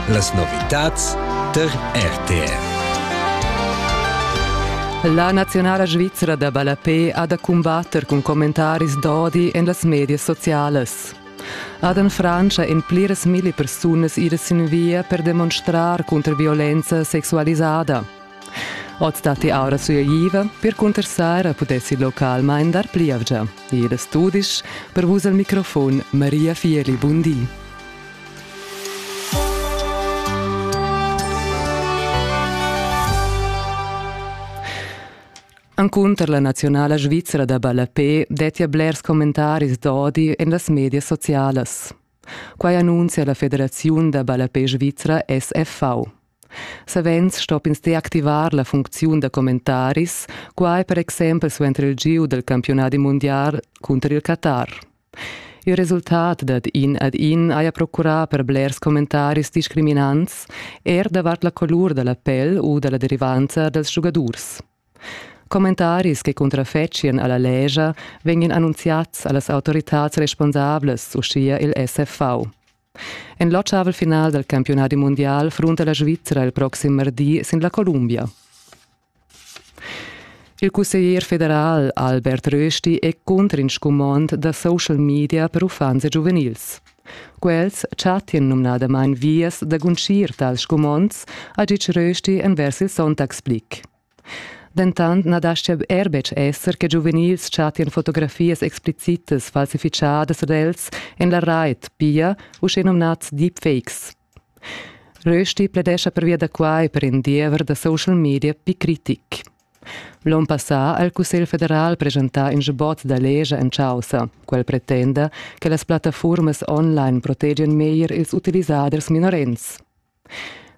Las novitads tar RTR. La naziunala svizra da ballapé ha da cumbatter cun commentaris d'odi en las medias socialas. Ad en Frantscha en pliras milli persunas ira sin via per demonstrar cunter violenza sexualisada. Oz datti aura suagiva per cunterstar a pudessi localmain dar plievgia. Ir da studis per vus al microfon Maria Fieli, bun di. Encunter la nazionala svizra da ballapé dettia blers commentaris d'odi en las medias socialas. Quai annunzia la federaziun da ballapé svizra SFV. Savens stopp'ins deactivar la funcziun da commentaris, quai per exempel suenter il giu dal campiunadi mundial cunter il Qatar. Il resultat dad in ad in haja procurà per blers commentaris discriminants, er davart la colur da la pel u da la derivanza dals giugadurs. Commentaris che cuntrafetschian a la legia vegnan annunziads a las autoritads responsablas, uschia il SFV. En l'otgavel final dal campiunadi mundial frunta la Svizra il proxim mardi sin la Columbia. Il cusseglier federal Albert Rösti è cunter in scumond da social media per uffants e giuvenils. Quels chattien numnadamain vias da guncir tals scumonds, ha ditg Rösti envers il Sonntagsblick. Dentant na dastga er betg esser che giuvenils chattian fotografias explicitas falsifichadas ad els en la rait, pia uschenumnads deepfakes. Rösti pledescha pervia da quai per in diever da social media picritic. L'onn passà ha il Cussegl federal presentà in sbot da legia en chaussa. Quel pretenda che las plattaformas online protegian meglier ils utilisaders minorens.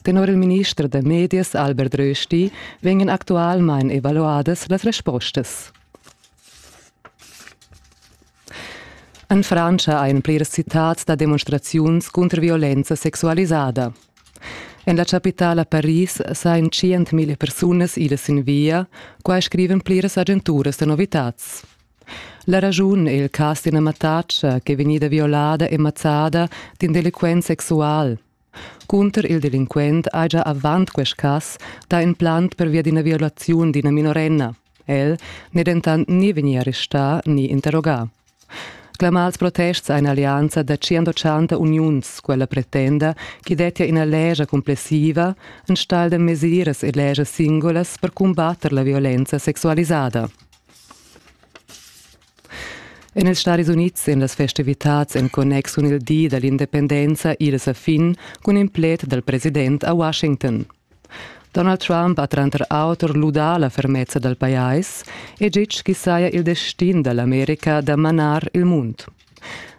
Tenor il minister da medias Albert Rösti vegnan actualmain evaluadas las respostas. En Frantscha ein pliras citads da demonstraziuns cunter violenza sexualisada. En la capitala Paris sain 100.000 persunas ilas sin via, quai scriven pliras agenturas da novitats. La ragiun è il cas d'ina mattatscha che è vegnida violada e mazzada d'in delinquent sexual. Cunter il delinquent haja avant quest cas dà in plant pervia d'ina violaziun d'ina minorenna. El n'è dentant ni vegnì arrestà ni interrogà. Clamà als protests a in'allianza da 180 uniuns, quella pretenda ch'i dettia ina legia cumplessiva enstagl da mesiras e legias singulas per cumbatter la violenza sexualisada. En ils Stadis Unids èn las festivitads en connex cun il di da l'independenza idas a fin cun in pled dal president a Washington. Donald Trump ha tranter auter ludà la fermezza dal pajais e ditg ch'i saja il destin da l'America da manar il mund.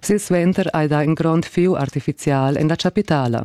Silsuenter hai dà in grond fieu artifizial en la chapitala.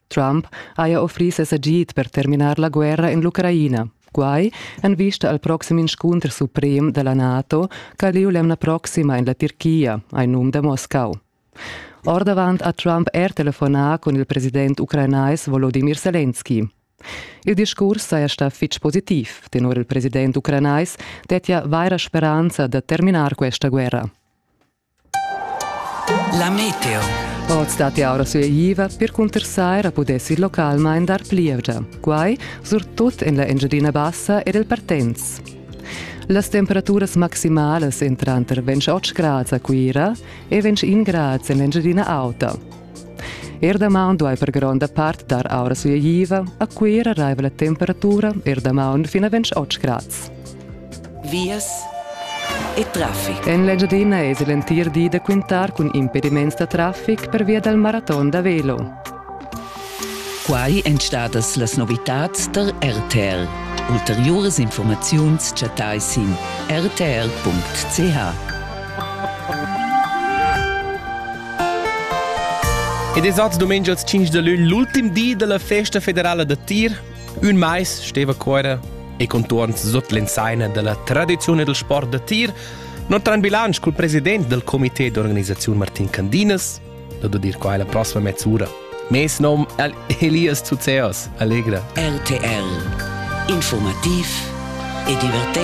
Trump haja offrì ses agid per terminar la guerra en l'Ucraina. Quai en vista al proxim inscunter suprem da la NATO ch'ha lieu l'emna proxima en la Turchia, hai num da Moscau. Ordavant ha Trump er telefonà cun il president ucrainais Volodimir Selenski. Il discurs saja stà fitg positiv. Tenor il president ucrainais dettia vaira speranza da terminar questa guerra. La meteo. Oz datti aura sueiva percunter saira pudess ir localmain dar plievgia. Quai surtut en la Engiadina Bassa ed el Partenz. Las temperaturas maximalas entran tranter 28 grads a Cuira e 21 grads en l'Engiadina Auta. Er damaun duai per gronda part dar aura sugliva, a Cuira raiva la temperatura er damaun fin a 28 grads. Vias e traffic. En l'Engiadina èsi l'entir di da quintar cun impediments da traffic per via dal maraton da velo. Quai èn stadas las novitads tar RTL. Ulteriuras informaziuns chattai sin rtl.ch. Ed es oz dumengias 5 da lun l'ultim di dalla festa federala da tir. Ün mais steva Cuera e contuorns sut l'ensaina dalla tradiziun e del sport da tir Notre en bilancio col president del comité d'organisazione Martin Candinas, da dir qua la prossima mezz'ora. Mes nom è Elias Zuzeos, allegra. RTL, informativ e divertente.